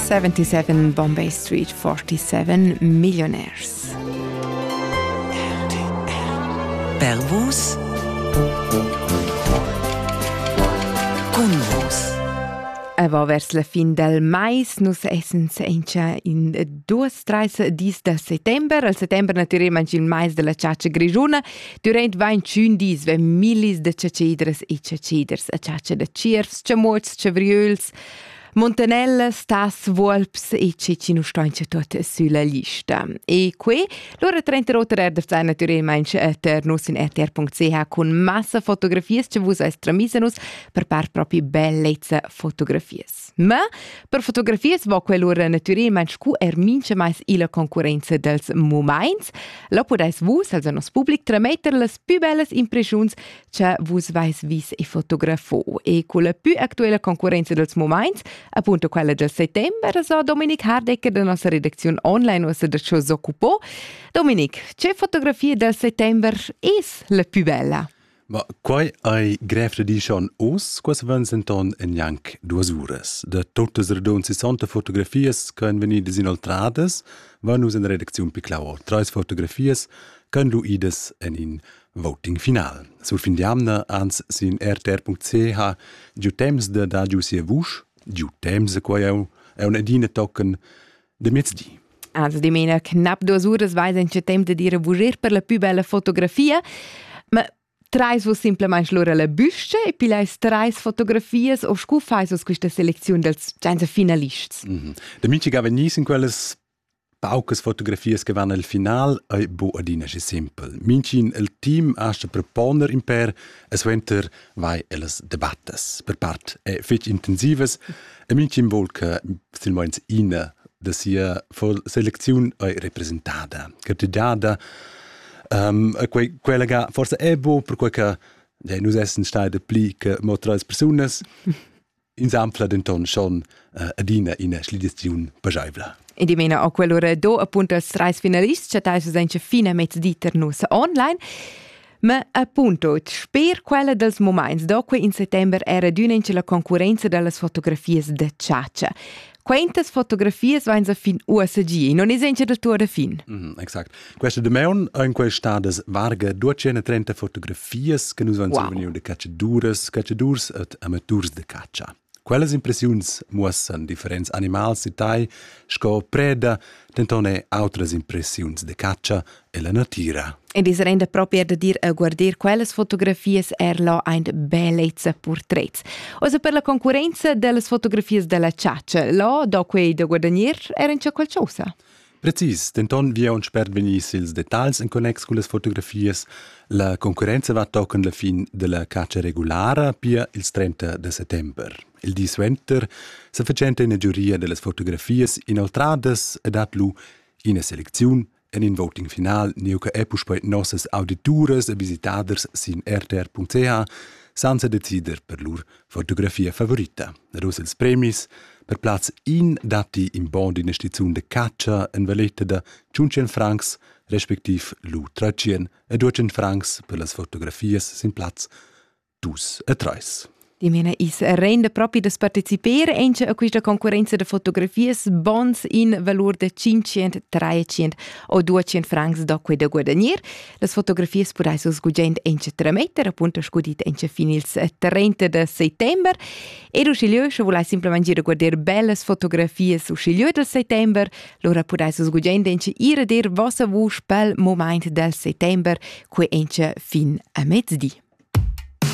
77 Bombay Street 47 Millionaires. Pervus Aber vers la fin del mais nus essen senza in duas treis dis de settember. Al settember naturalmente il mais della ciacia grigiuna Durant 21 dis vegn millis da chatschidras e chatschiders a chatscha da tschiervs, chamuots, chavriöls, Montanellas, tas, vuolps e che ci nu staincha tuot sülla lista. E que, lura 30 Roter erdafzai natürelmaing ter nus in rtr.ch cun massa fotografias che vus eis tramisa nus per par propi bellezza fotografias. Ma per fotografias va quell'ura natüralment scu er mincha mais illa concurrenza dels mumaints. La pudais vus, also nos public, trametter las pü bellas impreschiuns cha vus vais vis e fotografo. E culla pü actuela concurrenza dels mumaints, appunto quella del settembre, so Dominik Hardecker da nossa redacziun online uossa da ciò s'occupò. Dominik, che fotografia del settembre es la pü bella? Ma quai ei grev da dir schon oz, quels vegns enton en gnanc duas uras. Da tuttas radund 60 fotografias che ein vegnidas inoltradas, van nus en redacziun Piclau. Treis fotografias ch'han lu idas en in voting final. Sur fin d'jamna, ans sin rtr.ch, giu temps da dar giu sia vusch, giu temps, quai eu, eu adina tochen de mezdi. Also di mena knapp duas uras vais en ce temp de dire vurir per la più bella fotografia, ma trais vos simplemente lura la büsche e poi leis trais fotografias o scu fais vos questa selezione dels senza finalists? Mm -hmm. De Minci gava nis in quellas paucas fotografias che vanno al final è bu adina che simpel. Mincin il team asta per poner in per e suenter vai ellas debattas. Per part è fitch intensives E mintgin vol che silmeins ina da sia selecziun ei representada, che ti dada. Um, quei, quella ga forse è bo, perquei che dei, nus essen stai pli che mo treis persunas, insampla denton schon uh, adina ina schlidiziun pageivla. E dimena a quell'ora do appunto als treis finalists chattai su senza fine mezdi ter nus online. Ma appunto, sper quella dels moments do quei in settember era adüna inch la concurrenza dallas fotografias da chatscha. Quentas fotografias vain sa fin uossa gi, non es encha da tua da fin? Mm, exact. Questa damaun ein questadas varga 230 fotografias che nus van wow. survegniu de cacciaduras, cacciadurs et amaturs de caccia. Quellas impressiuns muossan differents animals da tai sco preda, denton er autras impressiuns da catscha ella natira. Ed is renda propi er da dir a guarder quellas fotografias er là ein bellezza portrets. Osa per la concurenza dellas fotografias della ciaccia, là do quei da guadagnir er in qualcosa. Precis, denton vi aunc sper vegnir ils detagls en connex con las fotografias, la concurrenza va tochen la fin della catscha regulara pia ils 30 de settember. Il di suenter se facenta ina giuria dellas fotografias inoltradas e dat lu ina seleziun en in voting final neu che è puspei nossas audituras e visitaders sin rtr.ch senza decider per lur fotografia favorita. Ed uss ils premis per plaz in datti in bond d'ina staziun de catscha en valetta da 500 francs respectiv lu 300 e 200 francs per las fotografias sin plaz dus e treis. Die meine is rende propi das partecipare anche a questa concorrenza de fotografias bons in valor de 500, 300 o 200 francs da quei da guadagnare. Las fotografias pudais vus gugent en tremeter, appunto scudit en fin ils 30 de settembre. Ed uschiglieu, sche vulais simplesmente ir a guardare belles fotografias uschiglieu del settembre, lora pudais vus gugent en ir a dir vossa vusch pel moment del settembre, quei en fin a mezdi.